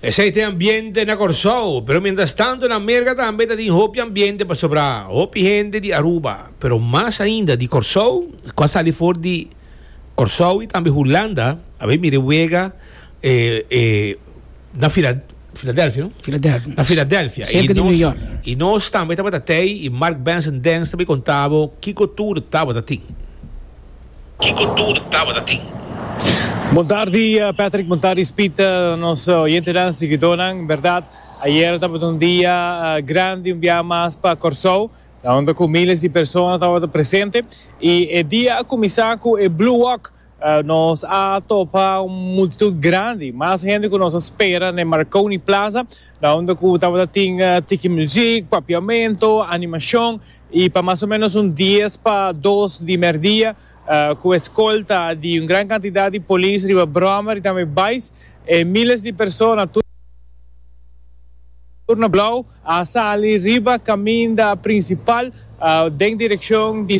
Esei te ambiente na Kòrsou, pero miéntras tantu na Merka tambe ta tin hopi ambiente pasobra hopi hende di Aruba, pero mas ainda di Kòrsou ku a sali for di Kòrsou i tambe Hulanda a bai mira e wega na Filadèlfia, no? Filadelfia. Na Filadelfia. Serka di New York. I nos tambe tabata tei i Mark Benson Dance ta bai konta bo kiko tur tabata tin. Kiko tur tabata tin? Bon tardi Patrick, bon tardi Speed, nos oyentenan, siguidónan. Bèrdat, ayer tabata un dia grandi, un biaha mas pa Kòrsou, kaunda ku míles di persona tabata presente. I e dia a kuminsá ku e Blue Walk. Nos a topa un multitut grandi, mas hende ku nos a spera na e Marconi Plaza, kaunda ku tabata tin tiki muzik, papiamentu, animashon. y pa mas o menos un dies pa dos di merdia cu escolta di un gran cantidad di polis riba brommer y tambe bais e miles di persona tur na Blauw a sali riba caminda principal den direccion di